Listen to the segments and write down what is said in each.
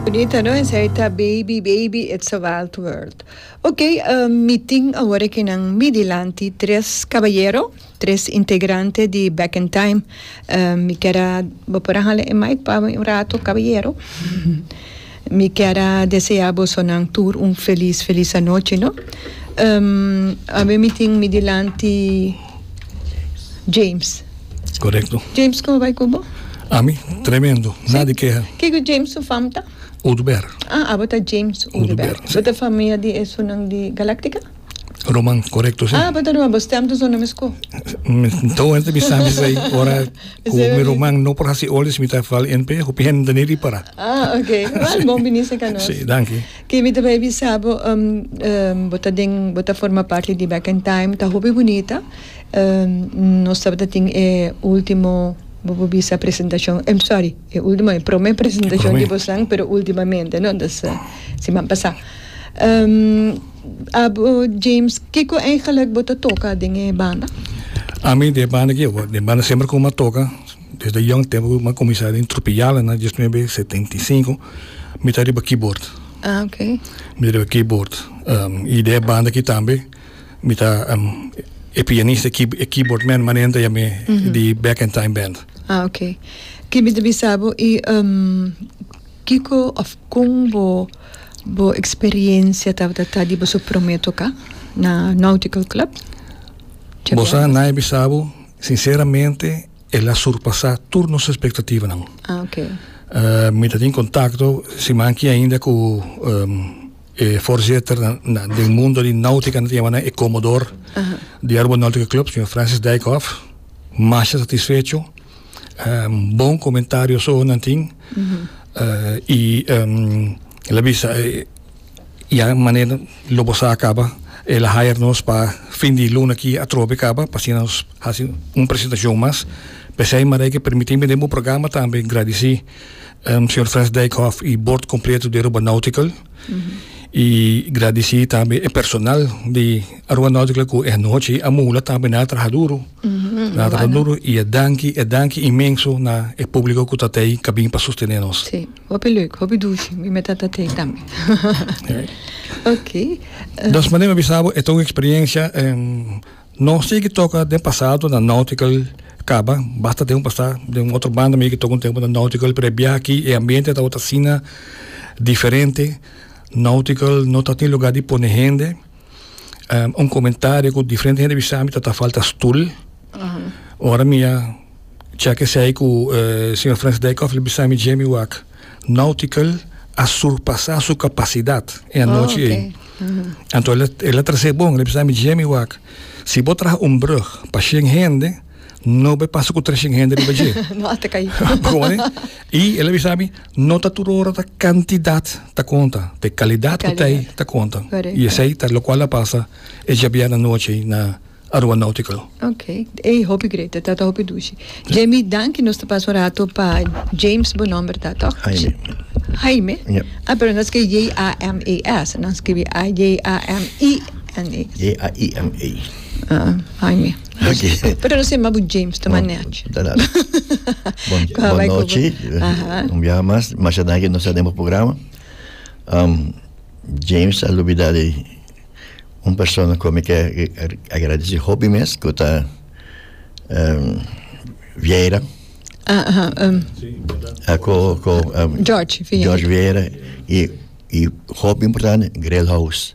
Bonita no esei ta baby baby it's a wild world ok mi tin awor aki nan mi dilanti tres cabayero tres integrante di back in time mi kier a bo por a hala e mic pa mi un rato cabayero mi kier a desea boso nan tur un feliz feliz anochi no awe mi tin mi dilanti. James. Correcto. James, como bai cu bo? A mi, tremendo. Sí. Nada de queja. Ke ku James su fam ta? Uduber. Ah, abo ta James Uduber. Uduber, sí. Bo ta famia di esunnan di Galactica? Roman, correcto, sí. Ah, bo ta Roman. Bo stem tu zona mes ku? Mi ta hopi ta bisa mi bay ora ku Esei mi babi. Roman no por hasi olis mi ta fal NP, hopi hende ta ni ripara. Ah, ok. Well, bon bini seca nos. Sí, danki. David ta bai bisa bo bo ta den bo ta forma parti di back in time ta hopi bunita nos tabata tin e ultimo bo por bisa presentacion sorry e ultimo e prome presentacion di bosnan pero ultimamente no ta siman pasa abo James kico eigenlic bo ta toca den e banda? Ami den e banda aki den e banda semper como a toca. Desde yong tempo cu mi a cuminsa den Tropijala na diesnuebe setenta i sinku mi ta riba keyboard. Ah, ok. Mi ta riba keyboard. Um, y den e banda aki tambe mi ta um, e pianista, e, key, e keyboard man manente ya mi di Back in Time Band. Ah, ok. Ki mi ta bisa bo, y um, kiko of con bo, bo experiencia tabata ta di boso prome toca na Nautical Club? Bosa, nadie a bisa bo. Sinceramente el a surpasa tur nos expectativanan. Ah, ok. Uh, mi ta tin contacto, si manki ainda cu um, e voorzitter na, na, del mundo di náutica, na llama e comodor uh -huh. di Aruba Náutica Club, señor Francis Dijkhoff, más satisfecho, um, bon comentario so nan tin, uh -huh. uh, y um, la visa, uh, Ya manera lo bo sa a kaba el a hire nos pa fin di luna aki atrobe kaba pa asina nos hasi un presentacion mas p'esei Maria ke permiti mi den bo programa tambe gradici señor Frans Dijkhof y bord completo di Aruba Nautical y gradici tambe e personal di Aruba Nautical ku e anochi a mula tambe nan a traha duro. Na ta duru y e danki, e danki inmenso na e publico cu ta tey ca bini pa sustene nos. Si, hopi leuk, hopi dushi, mi me ta ta tey tambe. Ok. Dos mane me bisa bo e ta un experiencia, nos ta yeki toca den pasado na Nautical caba, basta tempo pa sta den un otro banda mi yeki toca un tempo na Nautical pero e biaha aki e ambiente tabata asina diferente, Nautical no ta tin lugar di pone hende, un comentario cu diferente hende bisami ta ta falta stoel. Ora mi a check esei cu uh, señor Frans Dijkhoff le bisami Jamie Wak Nautical a surpasa su capacidad e anoche oh, okay. ei. Anto el, el a trase bon, le bisami Jamie Wak, si bo traha un brug pa 100 hende, no be pasa ku treshing hende riba dje. no ata kai. Begone. I el a bisa mi, no ta tur ora ta kantidat ta konta, ta e kalidat ku ta ei ta konta. Correcto. I esei ta lokual a pasa e djabiada anochi ei na Aruba Nautical. Ok. Ey, hopi great. E tata hopi dushi. Jamie, danki. Nos ta pasa un rato pa James bo nòmber ta, tòg? Jaime. Jaime? Ja. Ah, pero no skibi J-A-M-E-S. Nan skibi A-J-A-M-I-N-E. J-A-I-M-E. Ah, Jaime. Oké. Pero no se ma bu James toma Bon, nech. da nada. Bon, Kwa bon bai kubo. nochi. Aha. Un biaha mas. Masha danki nos a den bo programa. Um, James a lubida di un persona ku mi ke agradesi hopi mes ku ta um, Vieira. Ah, aha, um, Ah, ku, ku, um, George Vieira. George Vieira i i hopi importante Grel House.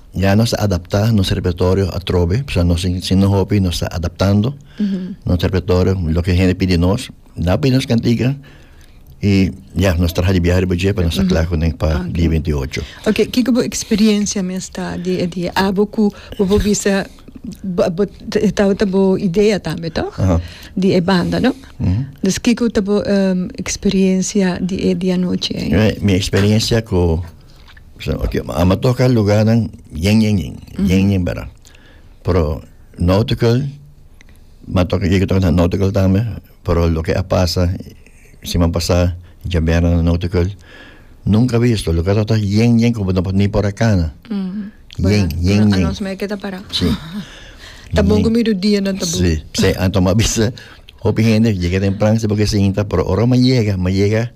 Ya nos ta adaptá nos repertorio atrobe, pasobra nos tin sinta hopi, nos ta adaptando nos repertorio loke hende pidi nos. Nan a pidi nos kantika i ya nos traha di biaha riba dje pa nos ta kla kuné pa dia binti ocho. Ok, kiko bo eksperiencia mes ta di di e abo ku bo por bisa bo e tabata bo idea tambe to? Di e banda no? Des kiko ta bo eksperiencia di e di anochi ei? Mi eksperiencia ku. a me toka lugarnan yen yen yen yen yen verdad pero nautical ma toka yega toka na nautical tambe pero loke a pasa siman pasa djabera na nautical nunca visto loke a tabata yen yen como no por ni por a cana yen yen yen Anos me keda para. si Ta bon ku midu dia nan ta bon. si p'esei anto ma bisa hopi hende yega tempran si bo ke sinta pero ora ma yega ma yega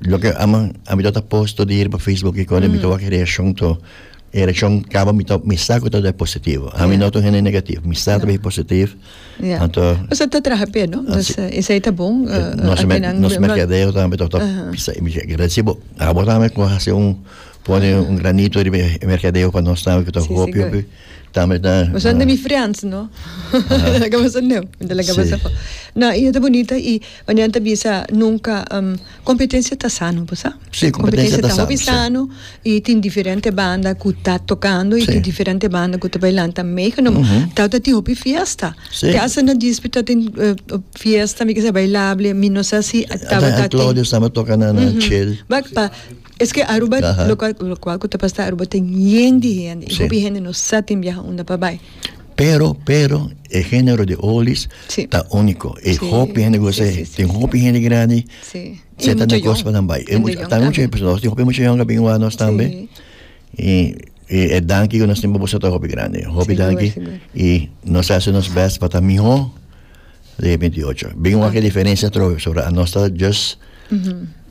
Lo que ama, a mi tota post todo ir pa Facebook y con mm. mi to wak reacción to. E reacción cabo mi to mi saco todo é positivo. A mi yeah. no to hene negativo, mi saco yeah. positivo. Yeah. Anto, o sea, te traje pe, no? Dus uh, is ita bon. Uh, no se me, no se me quedé, o tambe to to. Recibo, abo tambe ko hace un pone un granito de mercadeo para nós também que to hopi hopi. Ta me ta. Bo sa mi friends no? Laga bo sa neo. Mi ta laga bo sa fo. Na i e ta bonita i Marian ta bisa nunka um kompetensia ta sano bo sa. Si kompetensia ta sano si. Kompetensia ta hopi sano i tin diferente banda ku ta tokando i tin diferente banda ku ta bai lanta meegenomen. Uhum. Tau ta tin hopi fiesta. Si. Te hasta na dispit ta tin fiesta mi ke seha bailable mi no sa si tabata tin. Ata Claudio staba toka na chel. Bak pa. Eske Aruba lokual ku ta pastá Aruba tin yen di hende i hopi hende no sa tin biaha unda pa bai. Pero pero e genero di olis ta uniko i hopi hende gosa e tin hopi hende grandi seta na kos pa nan bai e mucha ta mucha bai nos tin hopi mucha yòn ku a bin wak nos tambe i e danki ku nos tin pa boso ta hopi grandi hopi danki i nos a hasi nos bèst pa ta mihó. Lei bintiocho. Bin wak e diferensia atrobe, pasobra anos ta just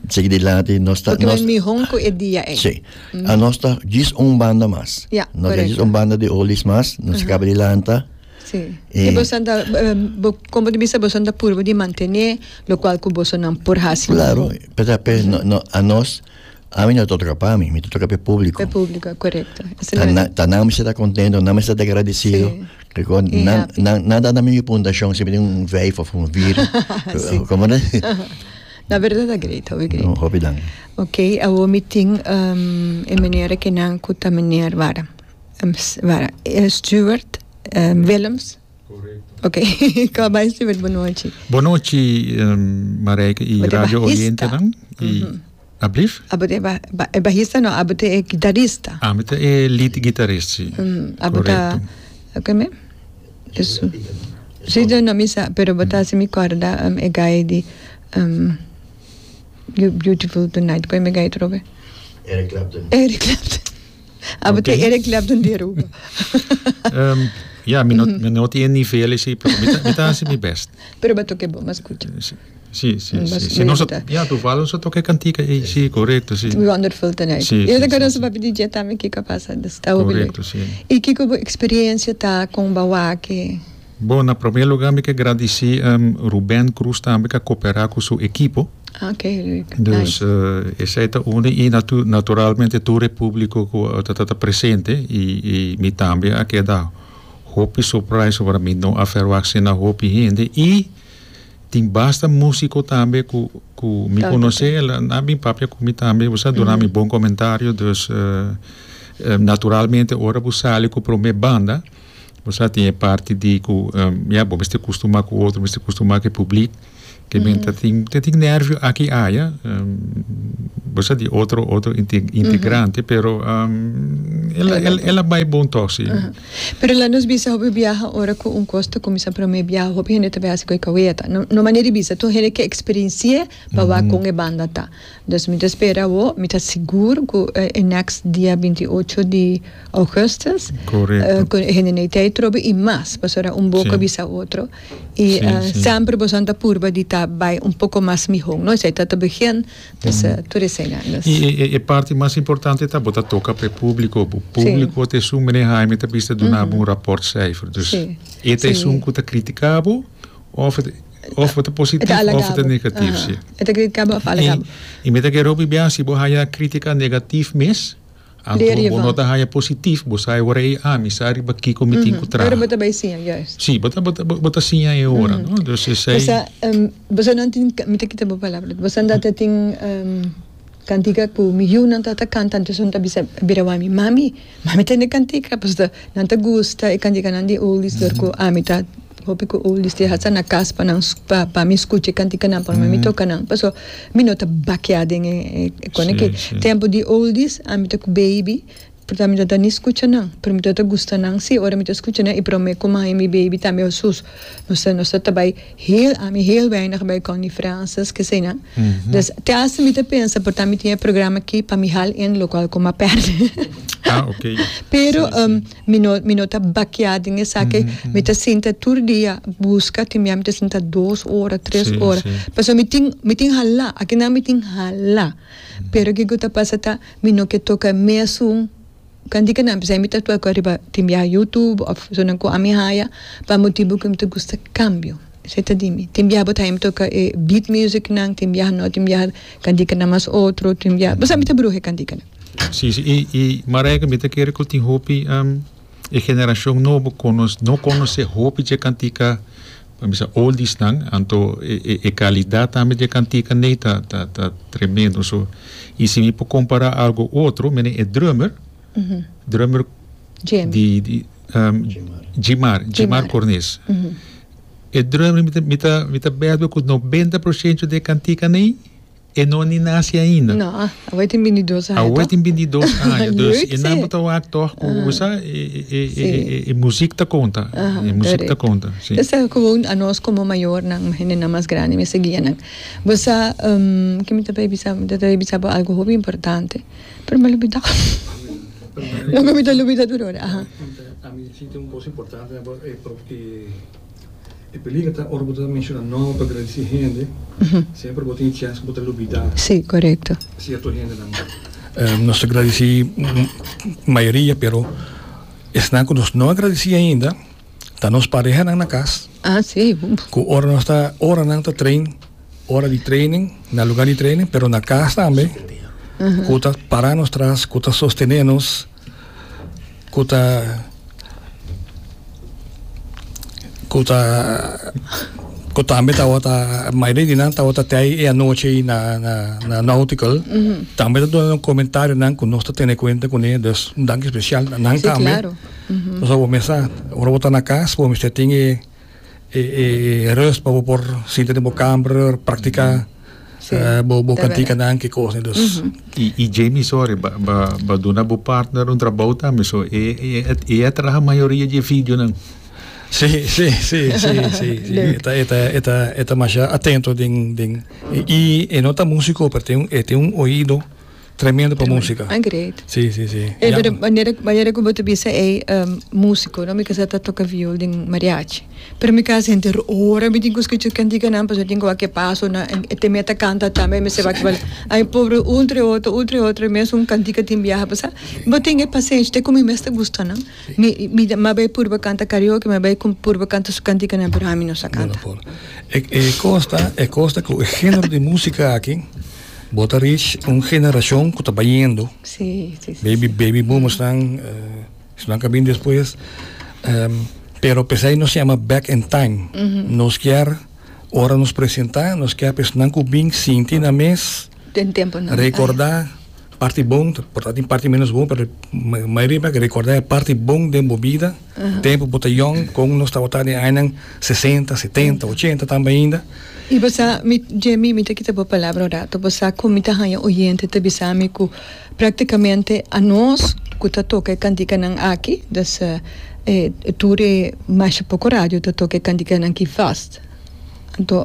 sigui dilanti, nos ta... Porque nos, mihon ku e dia ei. Sí. Anos ta jis un banda mas. Ya, correcto. Nos ta jis un banda di olis mas, nos kaba di lanta. Sí. E... Y boso anda, bo, como di bisa, boso anda purba di mantene lokual ku bosonan por hasi. Claro, p'esei, pe, no, no, anos. Ami no ta toca pa mi, mi ta toca p'e publico. P'e publico, corecto. Ta nan mester ta contento, nan mester ta agradecido. Nan ta dami mi puntacion siempre den un vijf of un vier. Como ta? Na berdad ta great, hopi great. Un hopi danki. Ok, awor mi tin e meneer cu ta meneer, wara, Stewart Willems. Oke, ka bai Stewart, bonochi. Bonochi, Marijke i radio oyentenan. Ablif? Abo te e bajista no, abo te e gitarista. Abo te e lead gitarist, si. Abo ta, kome? Eso. Si, no, no, mi sa, pero bo ta hasi mi korda e gai di You Beautiful Tonight, kome gai otro be? Eric Clapton. Eric Clapton. Abo te Eric Clapton di Aruba. um, ja, mi no, mm. mi no tiene nivel ese, pero mi, mi ta hace mi best. Pero va toque bo, mas escucha. Sí, sí, sí. Mas sí. Si no, ja, tu valo so toque cantica, eh, sí, correcto, sí. Wonderful tonight. Sí, y de cara sí, papi DJ también, Kiko pasa, está Correcto, sí. Y Kiko, experiencia ta con Bawake? Bo, na promé lugá mi ke gradisí Ruben Cruz tambe k'a koperá ku su ekipo. Dus esei ta unu i naturalmente tur e públiko ku ta presente i mi tambe a keda hopi surprais ora mi no a ferwagt asina hopi hende i tin basta músiko tambe ku ku mi konosé nan a bin papia ku mi tambe bo sa duna mi bon komentario. Dus naturalmente ora bo sali ku promé banda. Bo sa tin e parti di ku ya bo mester kustumá ku otro, mester kustumá ku e publiek, ke men ta tin ta tin nervio aki aya, bo sa di otro otro inte integrante pero el a bai bon tòg si. Pero la nos bisa hopi biaha ora ku un kos ta kuminsá promé biaha hopi hende ta bai hasi ku e kawia ta no manera di bisa tur hende ke eksperensi'é babá kon e banda ta. Nos mi ta spera awo, mi ta sigur ku e next dia binti i ocho di Augustus ku e hende nei tei trobe i mas paso ora un boka bisa otro i semper boso nan ta purba di ta bai un poko mas mihon no esei ta ta begin dus tur esei nan nos. I e parti mas importante ta bo ta toka pa e publiko bo publiko ta esun mene Haime ta bisa duna bo un raport seifer dus e ta esun ku ta kritika bo of. Of ta positivo of ta alagabo. negativo, si. Aha. E ta kere kaba of alagabo. I, i mi ta kere hopi bia si bo haya kritika negativo mes, a Leer bo, bo no ta haya positivo, bo sa e ora ei, ah, mi sa riba kiko mi tin ku traha. Pero bo ta bai siña, juist. Si, bo ta, bo ta, bo ta siña e ora, no? Bo sa, bo sa nan tin, mi ta kita bo palabra, bo sa nan ta tin. Cantica cu mi yunan ta ta canta anto esnan ta bisa bira wami mami mami tende cantica pasobra ta nan ta gusta e canticanan di oldies dor cu ami ta hopi cu oldies te hasta na cas pa nan pa pa mi scucha e canticanan pa mi toca nan pasobra mi no ta bakia den e cona ki tempo di oldies ami ta cu baby Porta mi ta ta ni skucha nan, pero mi ta ta gusta nan si. Ora mi ta skucha nan i promé ku mai mi beibi tambe Hosus, nos ta nos ta ta bai heel, ami heel weinig bai Connie Francis, keseinan. Des te hasta mi ta pensa porta mi tin e programa aki pa mi hal in lokual ku m'a pèrdè. Pero mi no mi no ta bakiá den esaki, mi ta sinta tur dia buska, tin bia mi ta sinta dos ora, tres ora. Pasobra mi tin mi tin hala, aki nan mi tin hala, pero ke ku ta pasa ta. Mi no ke toka mesun kanti ke nan bisa mi ta toka riba tin biaha YouTube of personanan ku ami haya pa motibu ku mi ta gusta kambio esei ta di mi tin biaha bo ta haya mi toka e beat music nan tin biaha no tin biaha kantika nan mas otro tin biaha bo sa mi ta bruha e kantikanan. Si si i i Marijke mi ta kere ku tin hopi e generashon nobo ku nos no konosé hopi dje kantika. Nan bisa oldies nan, anto e calidad tambe di e cantica n'ey ta ta tremendo. So y si mi por compara algo otro, mira e drummer, drummer di di Djimar, Djimar Cornes. E drummer mi ta mi ta mi ta bed bo cu noventa procento di e cantica n'ey. E no ni nasi ainda. No, awor tin bintidos aña toh. Awor tin bintidos aña, dus e nan por ta wak toh ku u sa e muzik ta konta, e muzik ta konta. Esa gewoon anos komo mayornan, hende nan mas grandi mester guia nan. Bo sa, ke mi ta bay bisa bo? Mi ta bay bisa bo algu hopi importante, pero mi a lubida loke mi ta lubida tur ora. Ami ta sinti un kos importante na bo e propio di. E peligra ta ora bo ta menciona nomber pa gradici hende, semper bo tin e chance cu bo ta lubida cierto hendenan. Nos ta gradici mayoria, pero esnan cu nos no a gradici ainda ta nos parehanan na cas, cu ora nos ta, ora nan ta train, ora di training, na lugar di training, pero na cas tambe, cu ta para nos tras, cu ta sostene nos. ku ta ku ta ku tambe tabata mai den di nan tabata te ai e anochi na na na Nautical tambe ta duna nan komentarionan ku nos ta tene kuenta kuné dus un danki spesial nan tambe nos a wòrdu mester sa ora bo ta na kas bo mester tin e e e rust pa bo por sinta den bo kamer praktika bo bo kantikannan ki kos dus i i Jamie sorry ba ba ba duna bo partner un trabou tambe so e e a traha mayoria di e videonan si si si si si e ta e ta e ta e ta masha atento den den i e no ta musiko pero e ten un oido Tremendo pa músika. Ah, great. Sí, sí, sí. Ey, pero manera, manera como te bisa, ey, um, músico, no? Mi casa ta toca viol den mariachi. Pero mi casa gente rora, mi tin que escucha cantica nan, pues mi tin que wak paso na, en, te meta canta tambe, mi se wak bal. Ay, pobre, un tre otro, un tre otro, mes un cantica tin biaha, pues, ah, bo tin e pasenchi, te como mes ta gusta, no? Mi, mi, ma bay purba canta karaoke, ma bay con purba canta su cantica nan, pero ami no sa canta. E, e costa, e costa cu e género de música aki, Bo ta rish un generashon ku ta bayendo. Baby baby boomersnan esnan ka bin despues pero pesei nos yama back in time nos kier ora nos presentá nos kier pa esnan ku bin sinti nan mes rekordá parti bon ta tin parti menos bon pero mayoria mei ke rekordá e parti bon den bo bida. Tempu bo ta yòn kon nos tabata den añanan sesenta, setenta, ochenta tambe ainda. I bo sa, mi, Jemmy, mi ta kita bo palabra un ratu, bo sa kon mi ta haña oyente ta bisa mi ku praktikamente anos ku ta toka e kantikanan aki, dus e tur e masha poko radio ta toka e kantikanan ki vast. Anto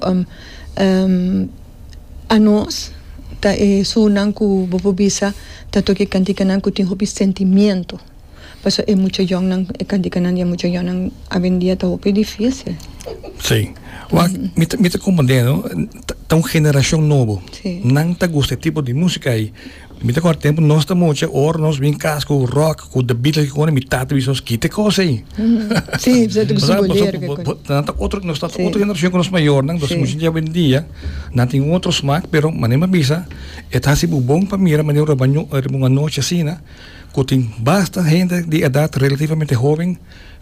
anos ta e surnan ku bo por bisa ta toka e kantikanan ku tin hopi sentimiento Paso e mucha yònnan, e kantikanan di e mucha yònnan awendia ta hopi difísil. Sí. Wak, mi ta, mi ta komprendé, no? Ta, ta un generashon nobo. Sí. Nan ta gusta e tipo di músika ei. Mi ta akorda tempu nos ta mucha, ora nos bin kas ku ròk, ku The Beatles, kiko konta, mi tata wis nos, Kite kos ei. Sí, pasobra ta gusta boleru, ke konta. Pasobra, nan ta otro, nos ta otro generashon ku nos mayornan, entonces mucha hende awendia nan tin un otro smak, pero mane mi a bisa, e ta hasi bo bon pa mira mane un robadon riba un anochi asina. ku tin basta hende di edat relativamente hoben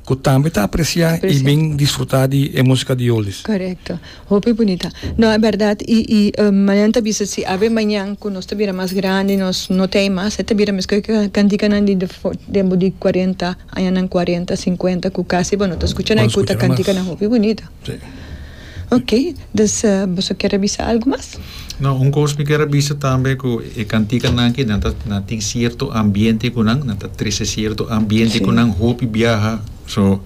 ku tambe ta apresiá i bin disfrutá di e músika di oldies. Korekto. Hopi bunita. No, e bèrdat. I, i Marian ta bisa si awe mañan ku nos ta bira mas grandi, nos no t'ei mas, e ta bira meskos ku e kantikanan di tempu di kuarenta añanan, kuarenta, sinkuenta, ku kasi bo no ta skucha na e kuta kantikanan hopi bunita. Sí. Ok, dus boso kier a bisa algu mas? No, un kos mi kier a bisa tambe ku e kantikanan aki nan ta nan tin sierto ambiente ku nan nan ta trese sierto ambiente ku nan hopi biaha so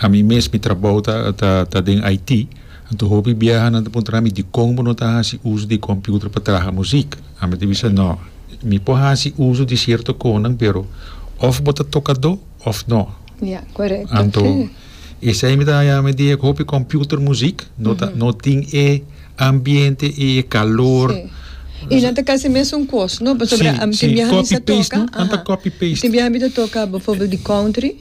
ami mes mi trabou ta ta ta den Haiti anto hopi biaha nan ta puntra mi dikon bo no ta hasi uso di computer pa traha musik ami ta bisa no mi por hasi uso di sierto konan pero of bo ta tokadó of no anto. Esei mi ta haña mi di e hopi computer muziek, no ta, no tin e ambiente i e kalor. Sí. I nan ta kasi mesun kos, no? Pasobra Sí, tin sí, biaha mi sa copy-paste, toka, no? Nan ta aha. copy-paste. Tin biaha mi ta toka befòrbeld di country,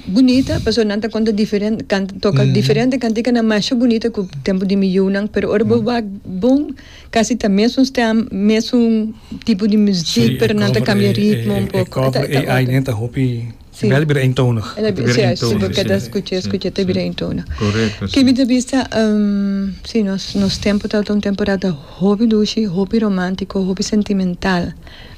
bunita, pasobra nan ta konta diferente kan, toka diferente kantikanan masha bunita ku tempu di mi yunan, pero ora bo wak bon kasi ta mesun stem, mesun tipo di muziek, pero nan ta kambia ritmo un poko, ta, ta otro. Si. Bel bira eentonig. E ta bira eentonig. Si bo keda skucha, skucha ta bira eentonig. Korekto. Kei mi ta bisa, si, nos, nos tempu tabata un temporada hopi dushi, hopi romantiko, hopi sentimental,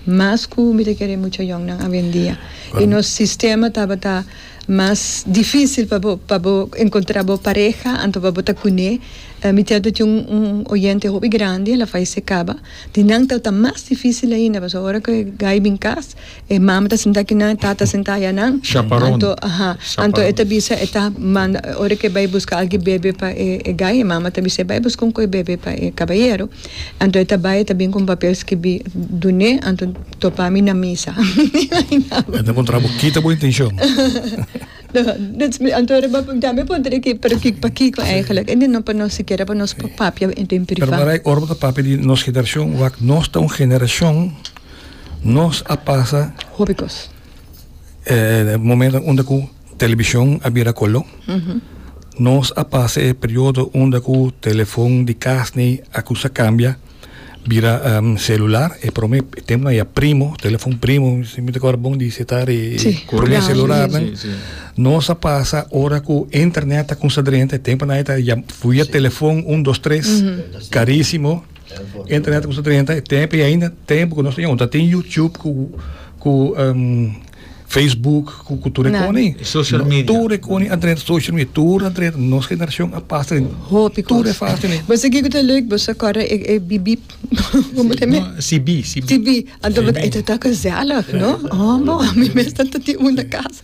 mas ku mi ta kere e mucha yòngnan awendia. I nos sistema tabata mas difisil pa bo, pa bo enkontrá bo pareha anto pa bo ta kuné. Mi tabata tin un, un oyente hopi grandi, el a falesé kaba, di nan tabata mas difisil ainda, pasobra ora ku e gai bin kas. E mama ta sinta aki nan, e tata ta sinta aya nan. Chaparon. Anto, aha, anto e ta bisa e ta manda, ora ke bai buska algi bebe pa e e gai, e mama ta bisa, bai buska un koi bebe pa e kabayero. Anto e ta bai, e ta bin ku un papel skibi, Dun'é, anto topa mi na misa. Mi imaginaba. E ta kontra bo, kita bo intenshon. Anto ora bo punta, mi punta di ki, pero ki, pa kiko eigelijk? E di no pa nos, sikiera pa nos papia en privat. Pero Marai, ora bo ta papia di nos generashon, wak nos ta un generashon. Nos a pasa hopi cos. Momento unda cu television a bira color. Nos a pasa e periodo unda cu telefon di cas ni acusa a cambia bira celular. E prome temponan e a primo, telefon primo. Mi ta acorda bon di sitar e prome celularnan. Nos a pasa ora cu internet a cuminsa drenta. E temponan ta via telefon un dos tres carisimo. Internet ku treinta e tempu i ainda tempu ku nos ta yunta tin YouTube ku ku um, Facebook ku ku tur e koni social media tur e koni a treinta social media tur a treinta nos generashon a pasa den hopi tur e fas den bo sigi ku ta leuk bo sa kore e e bip bip como te me CB CB CB anto bo ta e ta gezellig no oh bo mi mes ta tin un na casa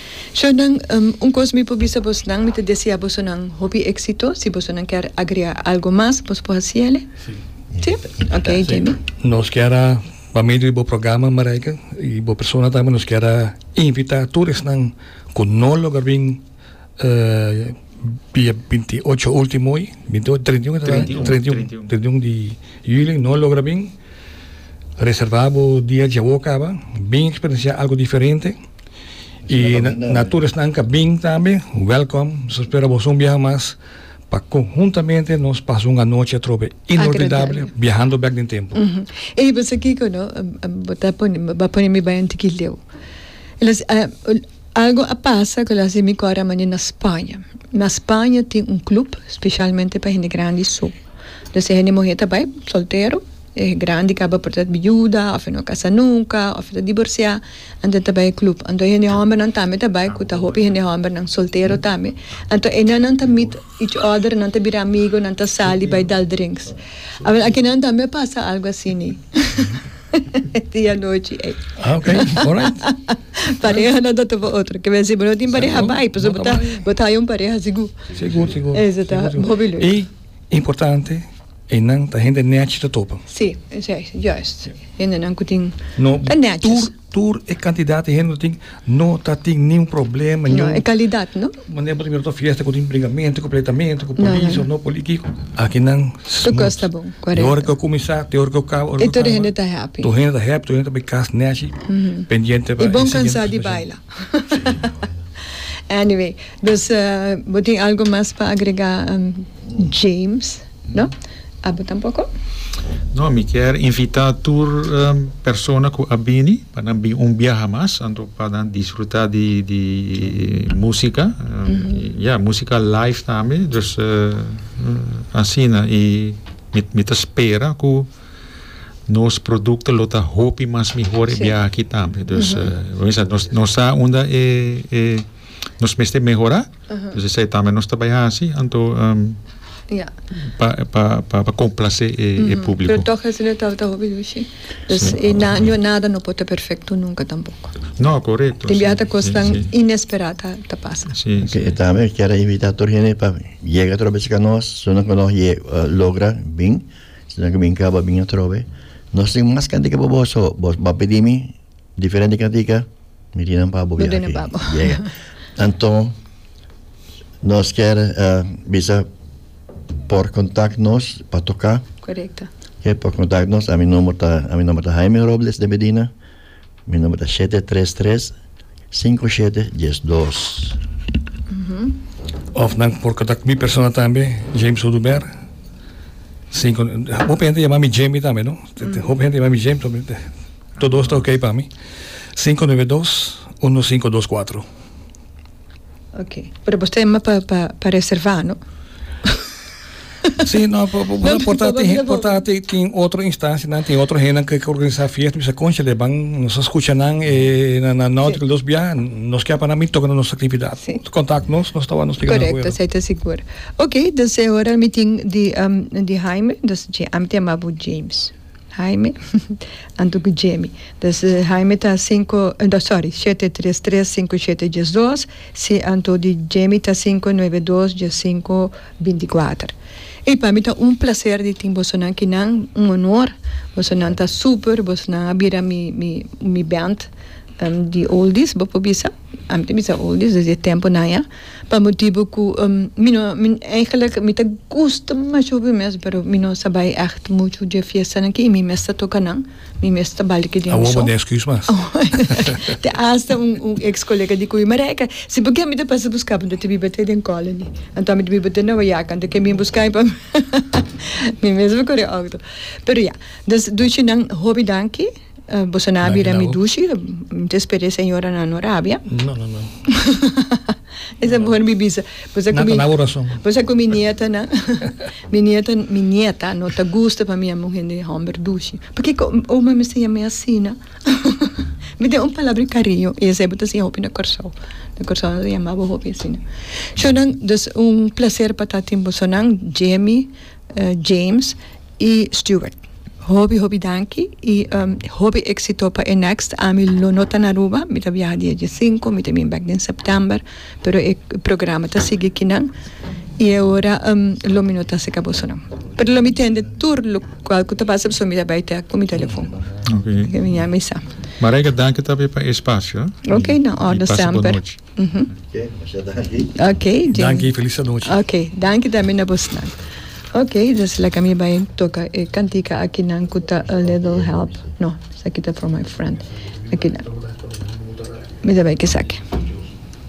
Shernan, Un kos mi por bisa bosnan, mi ta desea bosonan hopi éksito, si bosonan kier agreá algu mas, bos por hasi el'e. Sí? Ok, Jamie. Nos kier a, pa medio di bo programa Marijke i bo persona tambe, nos kier a invitá tur esnan ku no logra bin dia binti i ocho último hoy, binti i ocho, treinta i un tabata? Treinta i un. Treinta i un, treinta i un di julio i no logra bin, reservá bo dia djawow kaba, bin eksperensiá algu diferente. Y na tur esnan ka bin tambe, welkom. Nos espera boso un biaha mas pa conjuntamente nos pasa un anochi atrobe inolvidable Agradable. biahando bek den tempo. Ey, bo sa kiko no? Bo ta pone, bo a pone mi bai un tiki leu. El a si, ah, algo a pasa cu el a haci mi core a manda na Spaña. Na Spaña tin un club specialmente pa hende grandi so. Entonces hende muher ta bai, soltero, e grandi caba por ta biuda, of e no a casa nunca, of e ta divorcia. Anto ta bai e club. Anto hende hombernan tambe ta bai cu ta hopi hende hombernan soltero tambe. Anto e nenan ta meet each other, nan ta bira amigo, nan ta sali bai dal drinks. Awel akinan tambe a pasa algo asi ni? E dia anochi ey. Ah, ok. Alright. Pareha nan ta topa otro. Ke men si bo no tin pareha bai, pasobra bo ta bo ta haya un pareha sigur. Sigur, sigur. Ey, si ta hopi luego. Y importante. Einan ta hende nèchi ta topa. Sí, es ei, juist. Hendenan ku tin, ta nèchi. No, tur, tur e kantidat di hende ku tin, no ta tin niun problema, niun. No, e kalidat, no? Manera bo ta mira tur fiesta ku tin bringamento, ku pleitamento, ku polis òf no poli kiko. Aki nan smut. Tur kos ta bon, korekto. Di ora ku a kuminsá te ora ku a kaba, ora ku a kaba. I tur hende ta happy. Tur hende ta happy, tur hende ta bai kas nèchi, pendiente pa e siguiente presentacion. I bon kansá di baila. Sí, no. Anyway, dus bo tin algu mas pa agregá? James, No. Abo tampoko? No, mi kier invita tur persona ku a bini pa nan bin un biaha mas anto pa nan disfruta di di musika. Ya, musika live tambe. Dus asina i mi ta spera ku nos produkto lo ta hopi mas mihor e biaha aki tambe. Dus nos sa unda e. nos mester mehorá. Entonces esei tambe nos ta bai hasi, anto Ya. pa pa pa pa complacé e e público. Pero toch esei no tabata hopi dushi. Dus Sí. i na no nada no por ta perfecto nunca tampoco. No, correcto. Tin biaha ta cosnan Sí, sí. inesperá ta ta pasa. Sí, Ok, sí. e tambe kier invitá tur hende pa yega atrobe si ka nos, su nan ku nos ye eh, logra bin, si nan ku bin kaba bin atrobe. Nos tin mas kende ke boboso, bos ba pedí mi Diferente katika Mirinam pa bo viahe. Yega. Anton, nos ker uh, bisa por contact nos pa toca. Correcto. Okay, por contact nos. A mi nombre ta, a mi nombre ta Jaime Robles de Medina. Mi nombre ta 733 5712. Mm -hmm. Of nan por contact mi persona también, James Oduber. Cinco, hoop gente llama mi Jamie también, ¿no? Mm. Hoop gente llama mi James también. To dos ta ok pa mi. Sinku nuebe dos unu sinku dos kuatru. Ok. Pero boso ta yama pa pa pa reserva no? Si no bo bo ta porta tin hen porta tin tin otro instancia nan tin otro hennan ke ke organisa fiesta bisa conchele ban nos a scucha nan e na na no otro dos bia nos ke apanan mi toca na nos actividad contact nos nos ta wou nos plica nan acuerdo. Correcto esei ta sigur. Ok, dus e ora mi tin di di Haime, dus ami ta yama bo James. Jaime, Anto cu Jamie. Pues Jaime ta cinco, no sorry, shete tres tres cinco shete dies dos, si anto di Jamie ta cinco nueve dos dies cinco binti cuater. Ey pa mi ta un placer di tin bosonan kinan, un honor, bosonan ta super, bosonan a bira mi mi mi band di oldies bo por bisa, ami ta bisa oldies desde e temponan ya. Pa motibu ku mi no eigenlik mi ta gusta masha hopi mes pero mi no sa bai ègt muchu dje fiestanan aki i mi mes ta toka nan mi mes ta bal di ke dia mi son. Awor bo tin èsküs mas. Te asta un un eks kolega di Cuyo Mareka si por ke mi ta pasa buska bo mi ta biba te den Colony anto ami ta biba te Nueva York anto ke bin buska mi pa mi mi mes a kore outo pero ya dus dushi nan hopi danki. Boso na a bira mi dushi. Mi ta spera e señora nan no rabia. No, no, no. Esa e mihor mi bisa. Pasobra cu mi. Nan ta dabo rason. Pasobra cu mi nietanan, mi nieta, mi nieta no ta gusta pa mi yama un hende homber dushi. Pakico oma mester yam'e asina? Mi tin un palabra di cariño y esey bo ta siña hopi na Corsou. Na Corsou nan ta yama bo hopi asina. Sho nan, dus un placer pa ta tin bosonan, Jemmy, James. y Stewart. Hopi hopi danki y hopi exito pa e next ami lo no ta na Aruba mi ta biaha dia die sinku mi ta bin back den September pero e programa ta sigui aki nan y ahora lo mi no ta acerca boso nan pero lo mi tende tur locual cu ta pasa pasobra mi ta bay tec cu mi telefon mi a misa. Marijke danki tambe pa e espacio. Ok na orde semper. Oké, masha danki. Oké, Jay. Danki, felis anochi. Oké, danki tambe na bosnan. Oké, dus laga mi bai toka e kantika akinan ku ta A Little Help. No, esaki ta From My Friend. Akinan. Mi ta bai k'esaki.